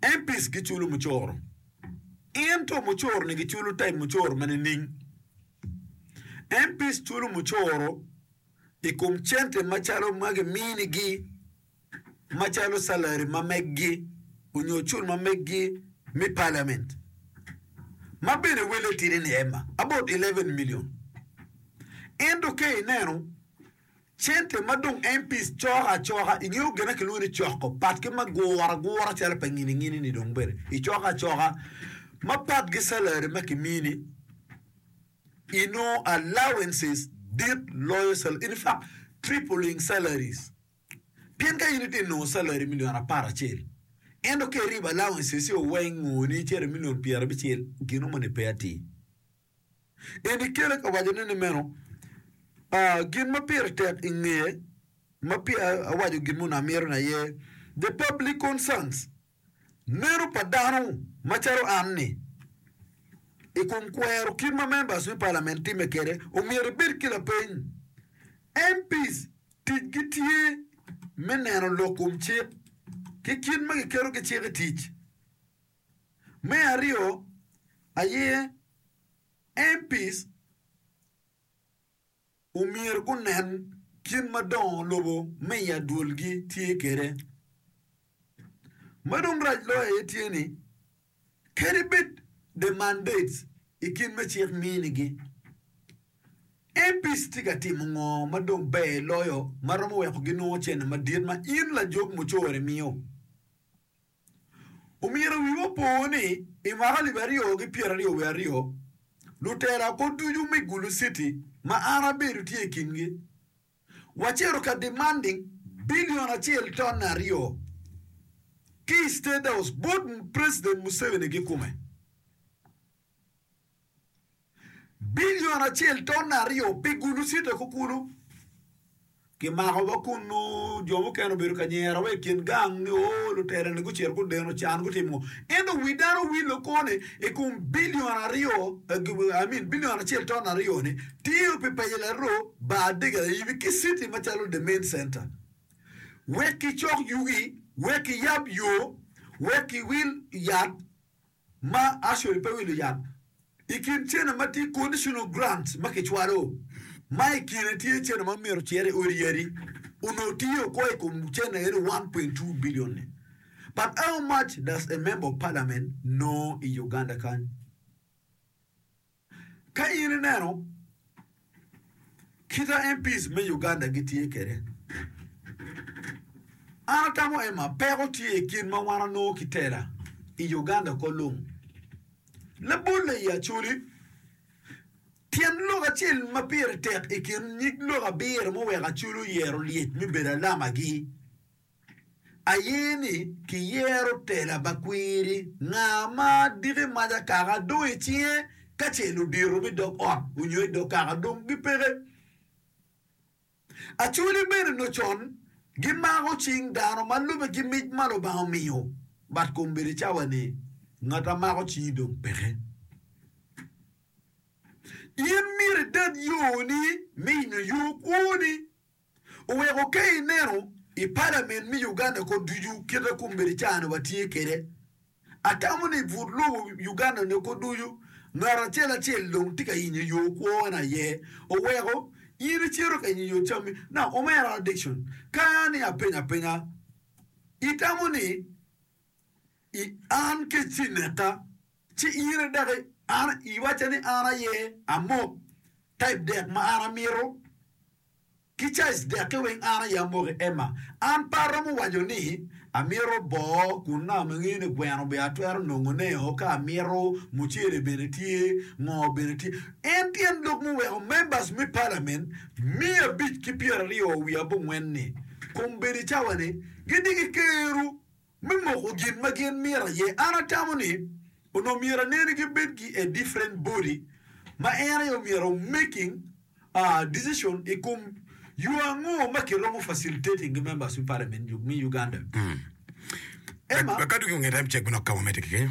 Empis giculo mucoro, ento mucoro-ni giculo type mucoro ma nining? Empis culo mucoro i kom cente macalo ma giminigi macalo salary ma meggi onyo cul ma meggi me parliament ma bene wele tidi ni ema about eleven million. Ento ka ineno Cente ma dong MPs coko acoka, ingeyo gin ma kilwongo ni coko pat ki ma guro agura calo pa ngini-ngini ni dong bene icoko acoka ma pat ki salary ma kimiyi ni inongo allowances dit loyo salary in fact tripling salaries pien ka in itye ka nongo salary million apar acel ento ka iribo allowances-io weng ngo ni cito i million pyerabicel gino moni pe atir. Eni kele ka wacone ni meno, aa, gin ma pire tek i ngeye, ma peya awaco gin mono amito ni aye, the public concerns, neno pa dano macalo an ni, i kom kwero kit ma members me Parliament timme kede, omyero ibed ki lapeny. MPs ticgi tye me neno lok kom cik ki kit ma giketo ki cik i tic. Me aryo aye, MPs omyero gunen kit ma dongo lobo me i adwolgi tye kwede. Ma dong rac loyo aye tye ni, kadi bed the mandates i kit me cik minigi, MPs tye ka timo ngo ma dong ber loyo ma romo weko ginongo cene madit ma in lajog mucoro imiyo? Omyero wiwa opo ni i mwaka alip aryo ki pyeraryo wiye aryo, lutela kwo ducu me Gulu City ma an abedo tye i kingi, wacito ka demanding billion acel ton aryo ki i State House bot President Museveni kikome. Bilion acel ton aryo pi gulucito ki kulu. Kimako wa kunnu, jo mukene obedo ka nyero wa i kin gang ni, 'Oo, lutela-ni gucito gudeno can, gutimo ngo? Ento wi dano owillo kwo ni, 'I kom bilion aryo, I mean, bilion acel ton aryo-ni, tiyo pi paco laroo, bar adega layibi ki citi macalo The Main Center. Wek kicok yugi, wek kiyab yo, wek kiwil yat. ma actually pe wilo yat i kin cene ma tye conditional grants ma kicwalo, ma i kine tye cene ma myero ocer i odi yadi, onongo tiyo oko i kom cene eno one point two billion ni. But how much does a member of parliament know i Uganda kany? Ka in ineno kita MPs me Uganda gitye kwede, an atamo Emma peko tye i kin ma wan anongo kitela i Uganda oko lung. Labolle i Acholi, tyen lok acel ma pire tek i kin nyig lok abiro muweko Acholi oyero lyec me bedo alamagi. Aye ni kiyero tela pa kwiri, nga ma diki mac akaka dong i cinge ka ce ludito me dog ot onyo i dog kaka dong gipeke. Acholi bene onyo con gimako cing dano ma lube ki mic ma Lubanga omiyo, bat kom bene cawa ni, ngat a mako cingi dong peke. In myero idad yoni me inyo yo kwoni oweko ke ineno i palament me Uganda ko ducu kite kombedi caa-ni watye kede. Atamo ni but lobo Uganda ne ko ducu ngat acel acel dong tye ka yenyo yo kwo en aye oweko in icito ka yenyo yo cammi. Now omera Dickson, ka ni apenyo apenya, itamo ni. I an ki ci neka, ci iyire dok i an iwacca ni an aye amok, ka i dek ma an amito ki caiz dekke weng an aye amok i ema. An pe aromo waco ni amito boo kun naka ma ngeyo ni gweno bene atwero nongo ne o ka amito, mucele bene tye, ngo bene tye. En tyen lok muweko members me parliament miya abic ki pyera aryo wiye abongwen ni, kombeddi cawa ni, gidiki keru. me moko gin ma gin mito aye. An atamo ni onongo myero aneni ki bed ki a different body ma en aye omyero o making a decision i kom yo ango ma ki romo facilitating ki members me parliament me Uganda. Emma. Lakaddu ki onge rem cek me nok ka wamete keken.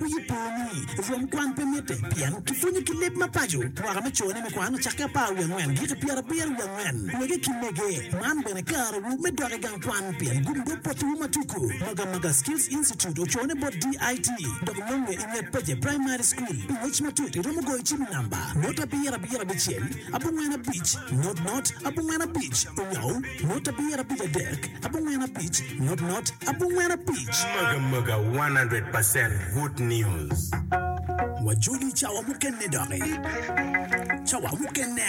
Wiyi po ni rwom kwan pe mitte, pien kipwonyo ki leb ma paco. Mwaka me cone me kwan ocakke apar wiye angwen giki pyerabiro wiye angwen. Wege ki mege, man bene karewu me dok i gang kwan pien gumdo potowu ma tuku. Magamaga Skills Institute ocone bot DIT dok nonge i nget Peje Primary School. Pi ngec matut iromo goyo cim i namba, not abiro abiro abicel, abongwen abic, not not, abongwen abic, onyo. Mot abiro abic adek, abongwen abic, not not, abongwen abic. Maga maga one hundred percent good news. Wajoli cawa mukene doki. Cawa mukene.